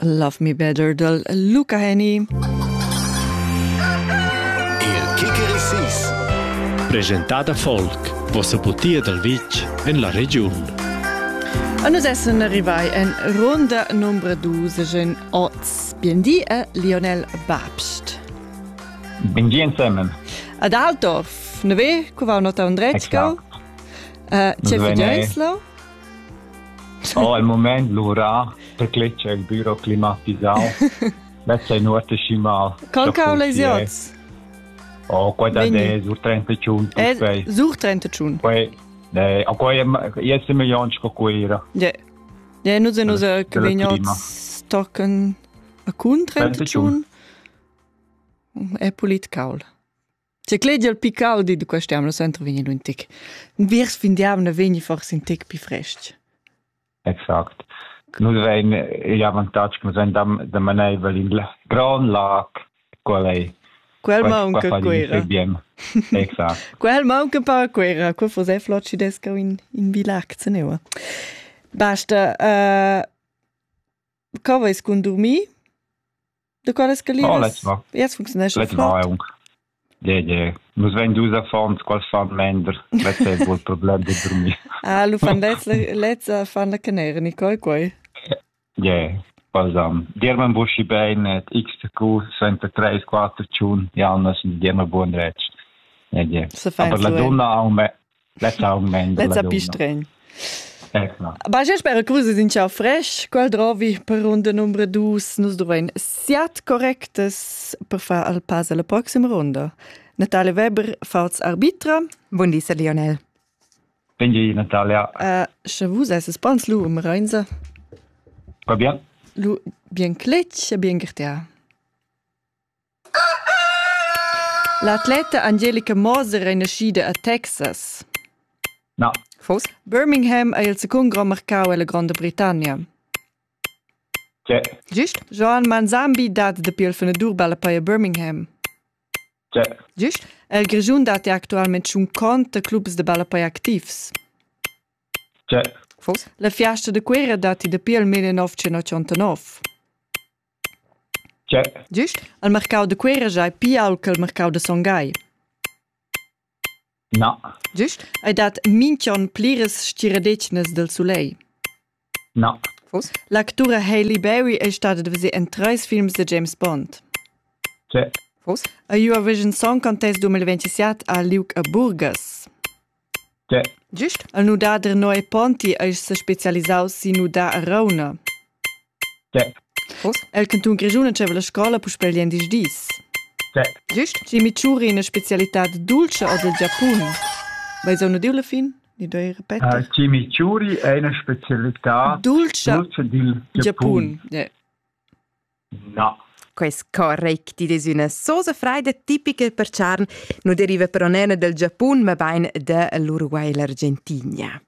Love Me Better dal Luca Henny. Il Kicker Sis. Presentada Folk, vossa putia dal vitg en la regiun. A nus essen rivai en ronda nombra dusegen oz Biendi e Lionel Babst. Biendi insemmen. Ad Altdorf, neve, cu va nota un drecco? C'è Vignenslo? Oh, il moment lura per cletger il büro climatisau. Mezza è nuota schi mal. Con calesios? Oh, qua da de sur 31 tuppei. Sur 31. Poi eh a quai jesse milion sco cuira. Ja. Ja, nu se nu se che vegnan stocken a cun 31. È pulit caul. Ti clediel pi caudi da quest temp, lo center vegni un tic. Viers fin diavna vegni forse un tic pi frest. Exact. Nus vein igl avantatg che nus vein da, da maneivel in gran lag, qual ei Quel maunca Cuera. Exact. Quel maunca per Cuera, quel fos è flot ci desca in, in bilac, se neua. Basta, uh, co veis cun dormir? De qual es galieras? Oh, let's va. Jetzt funktionesce. Let's va aunc. Yeah, yeah. Nus vein dus affons, quals fan mender. Let's è il problem di dormir. Ah, lu fan lezza, lezza fan la canera, Nicole, quei. Yeah, balsam. Dirman buschi beinet, x-cu, senta 3, 4, tschun, Janna, sind dirma buon retsch. Yeah, yeah. Se fein Aber la donna ha un, me- Lezza pistregn. Ecco. Bagia spera cruses in ciao fresh, qual drovi per runda numero dus nus dovein siat correctas per far al pass alla prossima runda. Natalia Weber, falls arbitra. Buon di, Sir Lionel. Buen di, Natalia. Uh, sche vus esses pans lu um Reinza? Va bien. Lu bien cletg e bien gertia. L'atleta Angelica Moser ei naschida a Texas. Fos? Birmingham ei il secund grond marcau ella Gronda Britannia. Gist? Joan Manzambi dat dapi il fenadur balla pei a Birmingham. Gist? El Grischun dat ei actualment tschun cont a clubs da ballapei activs. Fos? La fiasta da Cuera dat ei dapi il 1989. Tgè? Gist, al marcau da Cuera giai pia aunc el marcau da Son Gagl? Na. Gist, ei dat minch'on pliras stiradetgnas dal sulegl? Na. Vus? L'actura Hailey Berry ei stada da veser en treis films da James Bond. Tgè? Vus? Eu avesch in song contest 2027 a Liug a Burgas. Gist il nudader Noe Ponti eis sespecialisaus sin nudar a Rauna. Uss el cantun Grischun entscheiva la scola puspei gliendisdis dis. Gist schi mi tschuri ina specialitad dultscha ord il Giapun. Vai zau nudiu la fin? Ni doi repeter? Chimichuri è una specialità dultscha dil Giapun. No. Quest correct id es üna sosa fraida tipica per charn, nu deriva però nena dal Giapun, mabain da l'Uruguay e l'Argentigna.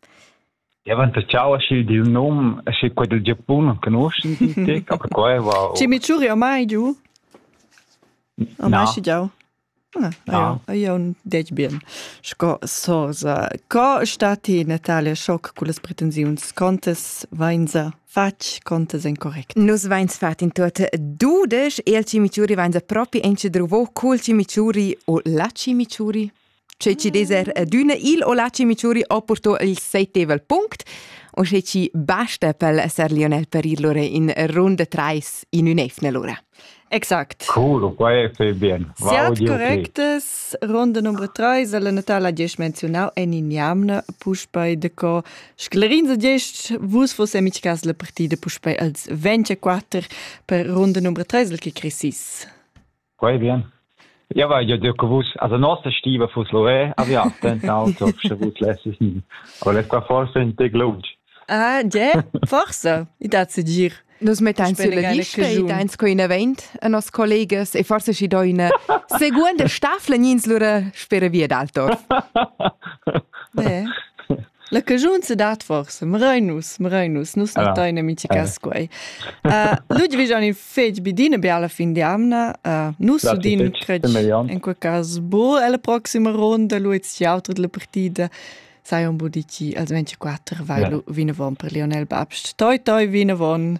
Ja, wenn der Ciao schild il num, schi quel del Giapun non conosci te, aber quel va. Ci mi ciuri ormai giù? Ormai schi giau. Io detg bien sco soza. Co sta ti, Natalia, schoc cullas pretensiuns? Contas vainsa fatg, contas incorrect? Nus vains fat in tuot dudesch e il cimichuri vainsa propi incedruvo cul cimichuri o la cimichuri. Sche ci deser d'üna il o la cimichuri ho purto il seitevel punct o sche ci basta pel Sir Lionel per ir lura in runda trais in ün'eivna lura. Exact. Cool, quai fai bien. Siat correctes, ronda numero 3, la natala gest menziunau en in jamna, puspei de co sclerin za gest, vus vos amichcas la partida puspei als 24 per ronda numero 3, el che cresis. Quai bien. Ja weil ja dir gewusst also nossa stiva fuss Loré a vi tentau so sche vus lesses ni aber les qua forse in te glunch Ah, ja, forse, i dat se dir. Nus mettain sulla lista e deins co in event a nos collegas e forse schi do una seconda staffla nins lura spere via dal torf. Yeah. La cagiun sedat forsa, mrein nus, mrein nus, nus non tein amiticas quei. Ludwig han il fetg bi d'ina biala fin di amna, nus udin cretg in quel cas bu alla proxima ronda, lu et siautra della partida, sai un bu dici, als 24 vai lu vinavon per Lionel Babst. Toi toi vinavon,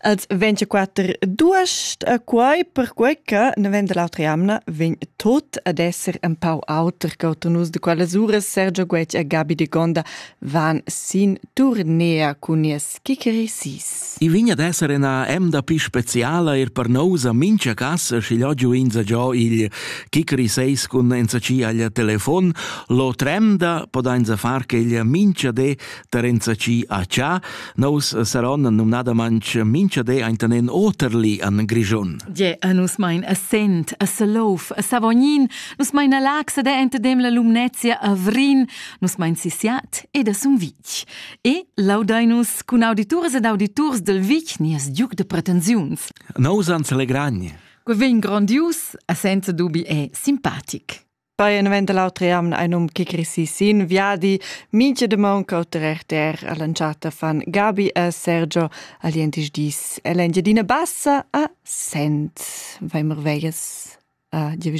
Els 24 duas eh, quai perquai che ne vend l'autra jamna vegn tot ad esser un pau auter che nus de quelles uras Sergio Guetg e Gabi de Gonda van sin turnea cun nies kikerisis. I vign ad esser ina emda pi speciala er per nous a mincha casa schi'l oggiu inza giò il kikeriseis cun enza ci agl telefon, lo tremda podainza far che il mincha de tar enzatgi a cha, nous saron numnadamantsch minchadé aintanen oterli an Grischun. Je, a nus mein a Sent, a Salouf, a Savognin, nus mein a Laxe de entadem la Lumnezia a Vrin, nus mein Sisiat ed a Sumvitg. E laudainus cun auditurs ed auditurs del Vic nies Duc de Pretensiuns. Nous ans allegragni. Que vegn grandius, a senza dubi è simpatic. Beinvent l'autre jamn ein um che crisi sin viadi, mincha demon cauter RTR all'entschatta fan Gabi e Sergio al dientis dis e l'Engiadina Bassa a Sent. Vai merveglias. Adieu,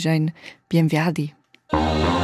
bien viadi.